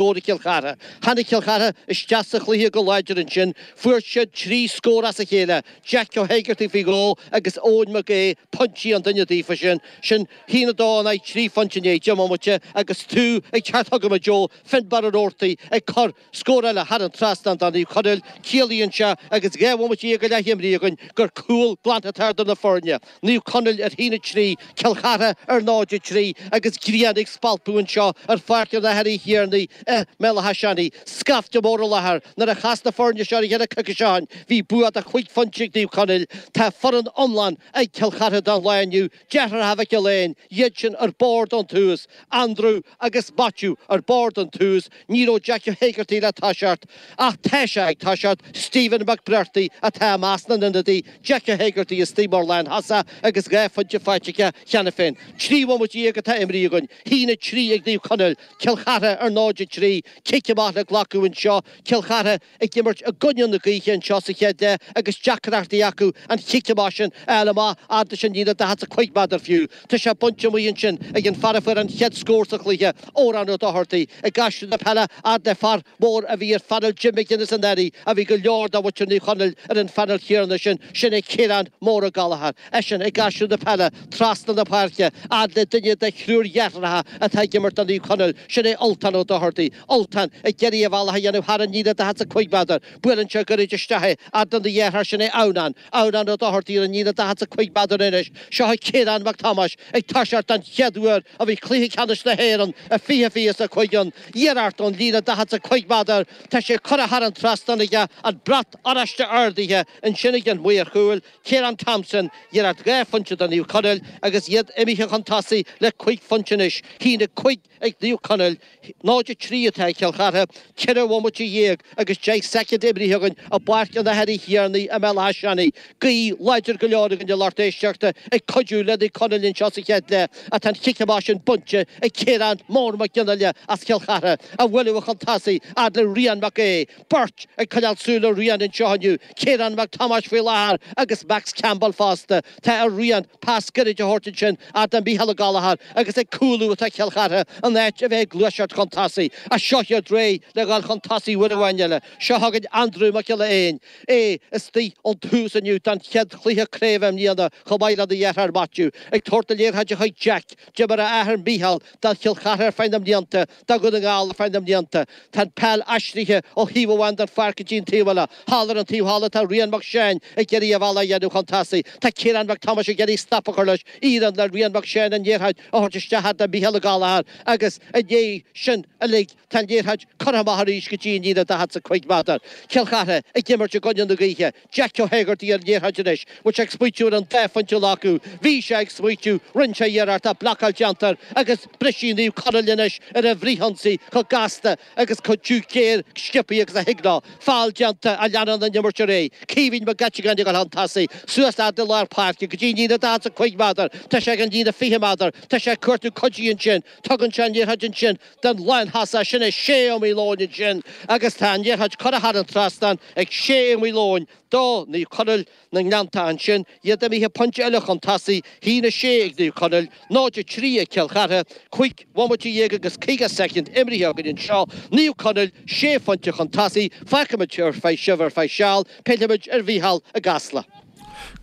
scór ag Cill Chartha. Tháinig Cill Chartha isteach sa chluiche go láidir ansin. Fuair siad trí scór as a chéile, Jeaic Ó hÉigeartaigh faoi dhó agus Eoin Mac Aoidh pointí an duine daofa sin. Sin 1 2 in aghaidh trí phointe i ndiaidh deich mbomaite agus tú ag teacht chugam a Joe, Finnbarr Roarty ag cur scór eile thar an trasnán do Naomh Conaill. Ciallaíonn seo agus dhá bhomaite dhéag go leith imeartha againn gur cúl glan atá idir na foirne. Naomh Conaill ar 1 3, Cill Chartha ar 0 3 agus grian ag spalpadh anseo ar Pháirc an Athar Uí Thiarnaigh i mBéal Átha Seanaidh. Scaifte mór i láthair. Nuair a chas na foirne seo ar a chéile coicís ó shin bhí bua de chúig phointe ag Naomh Conaill. Tá foireann iomlán ag Cill Chartha don lá inniu. Deartháireacha Mhic Giolla Eáin iad sin ar bord ón tús Andrew agus Maitiú ar bord ón tús, ní raibh Jeaic Ó hÉigeartaigh le toiseacht, ach tá sé ag toiseacht, Stephen McBrearty atá i measc na n-ionadaithe, Jeaic Ó hÉigeartaigh istoigh mar lánthosaí agus dhá phointe faighte aige cheana féin. Trí bhomaite dhéag atá imrithe againn, a haon a trí ag Naomh Conaill, Cill Chartha ar 0-3, cic amach le glacadh anseo, Cill Chartha, ag imirt i gcoinne na gaoithe anseo sa chéad leath agus deacrachtaí acu an chic amach sin a fháil amach fhad leis an líne daichead 's cúig méadar fiú. Tá sé bainte amuigh ansin ag an fear a fuair an chéad scór sa chluiche, Odhrán Ó Dochartaigh, ag aistriú na peile fhad le fear mór a bhí ar phainéal Jim McGuinness anuraidh a bhí go leor de mhuintir Naomh Conaill ar an phainéal chéanna sin, sin é Ciarán Mór Ó Gallchóir, eisean ag aistriú na peile trasna na páirce fhad le duine de thriúr dheartháireacha atá ag imirt do Naomh Conaill, sin é Ultán Ó Dochartaigh. Ultán, ag iarraidh a bhealach a dhéanamh thar an líne 45 méadar. Buaileann sé goirid isteach é, fhad lena dheartháir, sin é Adhamhnán. Adhamhnán Ó Dochartaigh ar an líne 45 méadar anois. Seo é Ciarán Mac Tomáis ag toiseacht don chéad uair ó bhí cluiche ceannais na hÉireann i 2025 ann, iarracht ón líne 45 méadar, tá sé curtha thar an trasnán aige, an brat oráiste ardaithe ansin ag an mhaor chúil, Ciarán Thompson, iarracht dhá phointe do Naomh Conaill agus iad imithe chun tosaigh le cúig phointe anois. A haon a cúig. Ag Naomh Conaill, 0 3 atá ag Cill Chartha, ceithre bhomaite dhéag agus deich soicind imrithe againn i bPáirc an Athar Uí Thiarnaigh i mBéal Átha Seanaidh. Gaoth láidir go leor againn a lucht éisteachta ag cuidiú le Naomh Conaill anseo sa chéad leath ach tá an chic amach sin bainte ag Ciarán Mór Mag Fhionnaile as Chill Chartha, á bhualadh chun tosaigh fhad le Rian Mac Aoidh. Beirt ag coinneáil súil ar Rian anseo inniu, Ciarán Mac Tomáis faoi láthair agus Max Campbell fosta. Tá ar Rian pas gairid a thabhairt ansin fhad le Micheál Ó Gallchóir agus ag cúlú atá Cill Chartha in áit a bheith ag gluaiseacht chun tosaigh ach seo hiad réidh le dhul chun tosaigh uair amháin eile. Seo chugainn Andrew Mac Giolla Eáin. É istigh ón tús inniu don chéad chluiche craobh i mbliana chomh maith lena dheartháir Maitiú. Ag tabhairt na liathróide chuig Jack, d'imir a athair Micheál do Chill Chartha ar feadh na mblianta, Tá Dún na nGall ar feadh na mblianta, tá an peil aistrithe ó thaobh amháin den pháirc go dtí an taobh eile. Thall ar an taobh thall atá Rian Mac Seáin ag iarraidh a bhealach a dhéanamh chun tosaigh. Tá Ciarán Mac Tomáis ag iarraidh stop a chur leis. Éiríonn le Rian Mac Seáin an liathróid a thabhairt isteach thart ar Mhíchéal O Gallagher agus i ndiaidh sin uilig tá an liathróid curtha amach arís go dtí an líne 45 méadar. Cill Chartha ag imirt i gcoinne na gaoithe. Jack O Hegarty ar an liathróid anois. Bhfuil sé ag smaoitiú ar an dá phointe a ghlacadh. Bhí sé ag smaoitiú. Rinn sé iarracht ach blocáil déanta air agus brisfidh Naomh Conaill anois ar an bhfrith-ionsaí chomh gasta agus chomh tiubh géar sciopthaí agus a thig leo. Fál déanta ach leanann an imirt ar aghaidh. Caoimhín Mag Eiteagáin ag dul chun tosaigh. Suas leat i lár páirce go dtí an líne 45 méadar. Tá sé ag an líne 20 méadar. Tá sé ag cuartú cuidiú ansin. Tugann sé an liathróid ansin don lántosaí sin Shea Malone ansin agus tá an liathróid curtha thar an trasnán ag Shea Malone do Naomh Conaill na nGleanntach ansin, tá siad imithe pointe eile chun tosaigh, 1 6 ag Naomh Conaill, 0 3 ag Cill Chartha, cúig bhomaite dhéag agus caoga soicind imrithe againn anseo, Naomh Conaill sé phointe chun tosaigh, fágfaimid ar feadh, sibh ar feadh seal, pillfimid ar Mhícheál i gCasla.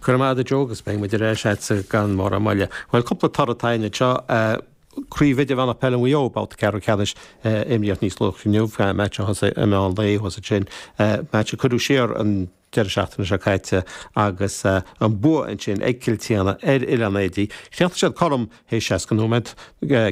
Go raibh maith agat a Joe agus beidh muid ar ais agatsa gan mórán moille. Bhuel cúpla toradh atá againn anseo. Craobh Idirmheánach Peile Mhaigh Eo, Babhta Ceathrú Ceannais a imríodh níos luaithe inniu, match a thosaigh i meán lae, thosaigh sin, match a cuireadh siar an deireadh seachtaine seo caite agus an bua ansin ag Cill tSéadhna ar Oileán Éadaí. Chríochnaigh siad cothrom théis 60 nóiméad,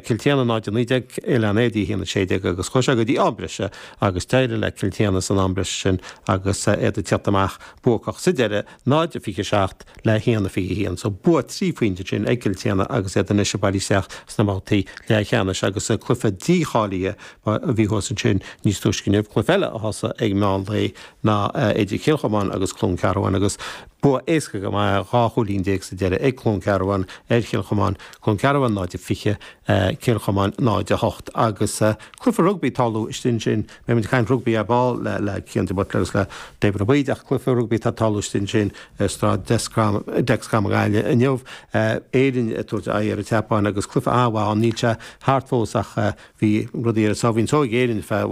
Cill tSéadhna 0-19, Oileán Éadaí 1-16 agus chuaigh sé go dtí am breise agus d'éirigh le Cill tSéadhna san am breise sin agus iad ag tíocht amach buacach sa deireadh. 0:27 le 1:21, so bua trí phointe ansin ag Cill tSéadhna agus iad anois ag bailiú isteach sna babhtaí leathcheannais agus cluiche dícháilithe a bhí thuas ansin níos túisce inniu, cluiche eile a thosaigh ag meán lae ná idir Cill Chomáin agus Cluain Cearbháin agus bua éasca go maith, dhá chúilín déag sa deireadh ag Cluain Cearbháin ar Chill Chomáin, Cluain Cearbháin 0:20, Cill Chomáin 0:08 agus cluiche rugbaí ag tarlú istigh ansin. Beimid ag caint rugbaí ar ball le Cian De Buitléir agus le David Ó Baoid, ach cluiche rugbaí atá ag tarlú istigh ansin i Staid Dexcom na Gaillimhe inniu, Éirinn ag tabhairt aghaidh ar an tSeapáin agus cluiche an-mhaith ann. Níl sé thart fós ach bhí rudaí ar a sáimhín só ag Éirinn ar feadh i